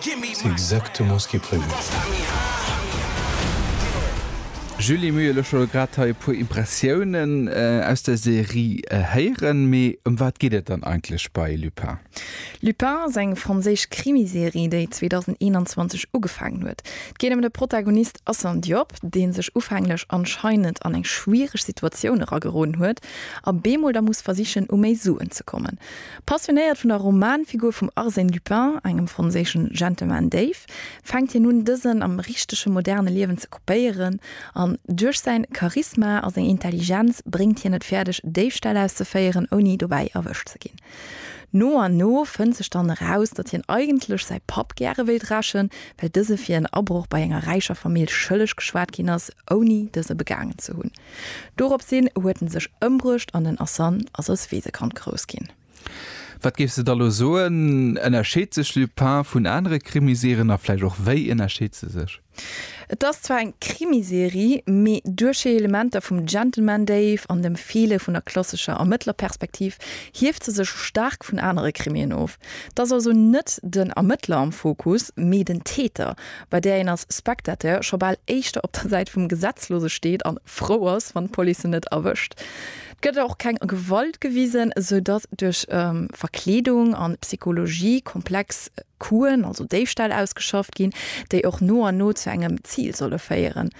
C'est exactement ce qui est prévu. Julie Muyr, elo scho grad hei e puer Impressiounen aus der Serie héieren, mee ëm wat geet et dann eigentlech bei Lupin? Lupin ass eng franséisch Krimiserie, déi 2021 ugefaangen huet. Et geet ëm de Protagonist Assane Diop, dee sech ufänglech anscheinend an eng schwiereg Situatioun erageroden huet a bemol da muss versichen, u méi Suen ze kommen. Passionéiert vun der Romanfigur vum Arsène Lupin, engem franséischen Gentleman Dave, fänkt hien un, dësen am richtege moderne Liewen ze kopéieren, an duerch säin Charisma a seng Intelligenz bréngt hien et fäerdeg, Déifställ auszeféieren, ouni dobäi erwëscht ze ginn. No an no fënnt sech dann eraus, datt hien eigentlech säi Papp gäre wéilt rächen, well dëse fir en Abroch bei enger räicher Famill schëlleg geschwat ginn ass, ouni dëse begaangen ze hunn. Doropshin huet en sech ëmbruecht an den Asan ass als Weesekand grouss ginn. Wat géifs de da lo soen, ënnerscheet sech Lupin vun anere Krimiserien a vläicht och wéi ënnerscheet se sech? Et ass zwar eng Krimiserie, mee duerch hir Elementer vum Gentleman Dave an dem Feele vun der klassescher Ermëttlerperspektiv hieft se sech staark vun anere Krimien of. Et ass also net den Ermëttler am Fokus, mee den Täter, bei där een als Spectateur scho bal éischter op der Säit vum Gesetzlose steet an frou ass, wann d'Police en net erwëscht. Et gëtt och keng Gewalt gewisen, sou datt duerch Verkleedung an Psychologie komplex Coup'en, also Déifställ, ausgeschafft ginn, déi och no an no zu engem Zil solle féieren.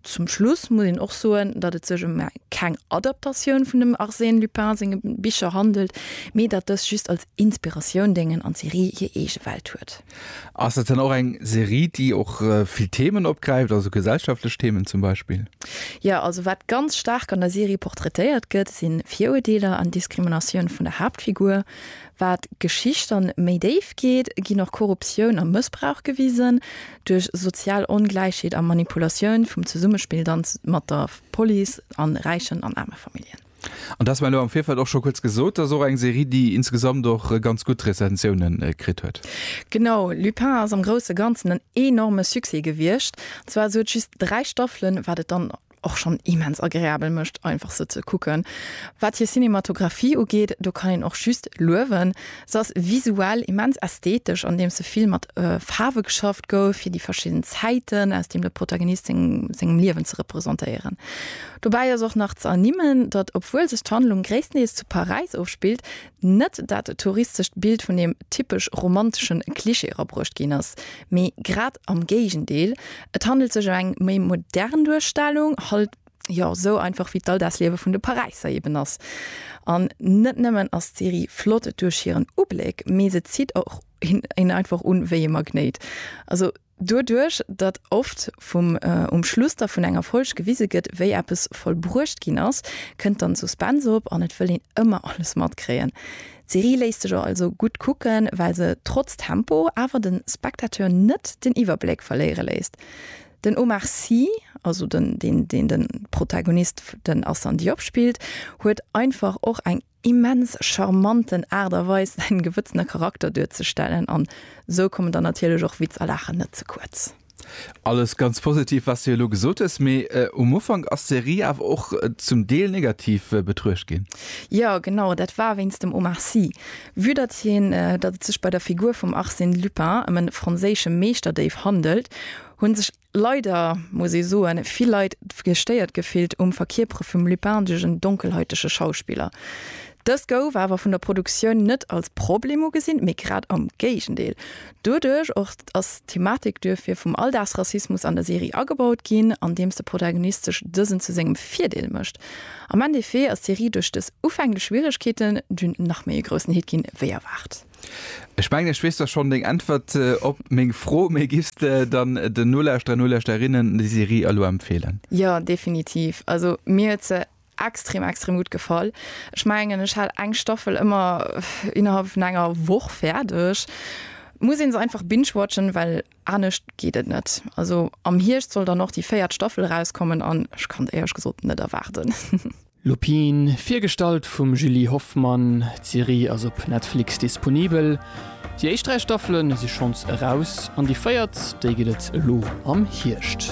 Zum Schluss muss een och soen, datt et sech ëm keng Adaptatioun vun dem Arsène Lupin senge Bicher handelt, mee datt dës just als Inspiratioun déngen an d'Serie hir eege Welt huet. Ass dat dann och eng Serie, déi och vill Themen opgräift, also gesellschaftlech Themen zum Beispill? Jo, also wat ganz staark an der Serie portraitéiert gëtt, si Viruerdeeler an Diskriminatioun vun der Haaptfigur. Wat d'Geschicht dann méi déif geet, ginn och Korruptioun a Mëssbrauch gewisen. Duerch sozial Ongläichheet a Manipulatioun vum Zesummespill dann mat der Police an räichen an aarme Familljen. An dass mer elo am Virfeld och scho kuerz gesot, dass och eng Serie, déi insgesamt och ganz gutt Rezensiounen kritt huet. Genau, Lupin ass am grousse Ganzen en enorme Succès gewiescht. Zwar sou et just 3 Staffelen, wat et dann och schonn immens agreabel mécht einfach se ze kucken. Wat hir Cinematographie ugeet, do kann een och just luewen. Se ass visuell immens ästhetesch, andeems se vill mat Faarwe geschafft gouf, fir déi verschidden Zäiten aus deem de Protagonist seng sengem Liewen ze representéieren. Dobäi ass och nach ze ernimmen, datt obwuel sech d'Handlung gréisstendeels zu Paräis ofspillt, Net dat touristescht Bild vun deem typesch romantesche Klischee erabruecht ginn ass, mee grad am Géigendeel, et handelt sech ëm eng méi modern Duerstellung, halt jo sou einfach wéi d'Alldagsliewe vun de Paräisser eben ass. An net nëmmen ass d'Serie flott duerch hiren Ubléck, mee se zitt och een einfach un wéi e Magnéit. Also. Doduerch, datt oft vum um Schluss da vun enger Folg gewise gëtt, wéi eppes vollbruecht ginn ass, kënnt dann Suspense op an et wëll een ëmmer alles matkréien. D'Serie léisst sech also gutt kucken, well se trotz Tempo awer de Spectateur net den Iwwerbléck verléiere léisst. Den Omar Sy, also den deen den Protagonist den Assane Diop spillt, huet einfach och eng immens charmanten Aart a Weis säin gewëtzene Charakter duerzestellen an sou kommen dann natierlech och Witz a Laachen net ze kuerz. Alles ganz positiv wat s de elo gesot hues, mee um Ufank ass d'Serie awer och zum Deel negativ betruecht ginn. Jo genau, dat war wéinst dem Omar Sy. Vue datt hien datt et sech bei der Figur vum Arsène Lupin ëm e franséische Meeschterdéif handelt, hunn sech. Leider muss ee soen, vill Leit gestéiert gefillt um Verkierpere vum lupindegen, donkelhäutege Schauspiller. Dëst gouf awer vun der Produktioun net als Problem ugesinn, mee grad am Géigendeel. Doduerch och ass d'Thematik duerfir vum Alldagsrassismus an der Serie agebaut ginn, andeems de Protagonist sech dësen zu sengem Virdeel mécht. Am Endeffet ass d'Serie duerch dës ufänglech Schwieregkeeten dunn nach méi e groussen Hit ginn, wéi erwaart. Ech mengen ech weess da schonn deng Äntwert op meng Fro, mee giffs de dann den Nolauschterer, Nolauschterinnen déi Serie elo empfeelen? Jo, definitiv. Also mir huet se extrem, extrem gutt gefall. Ech mengen ech hat eng Staffel ëmmer innerhalb vun enger Woch fäerdeg. Muss een se einfach binge-watchen, well anescht geet et net. Also am Hierscht soll dann och déi véiert Staffel erauskommen an ech kann et éierlech gesot net erwaarden. Lupin, virgestallt vum Julie Hoffmann. D'Serie ass op Netflix disponibel. Déi éischt 3 Staffele si schonns eraus an déi véiert, déi gëtt et elo am Hierscht.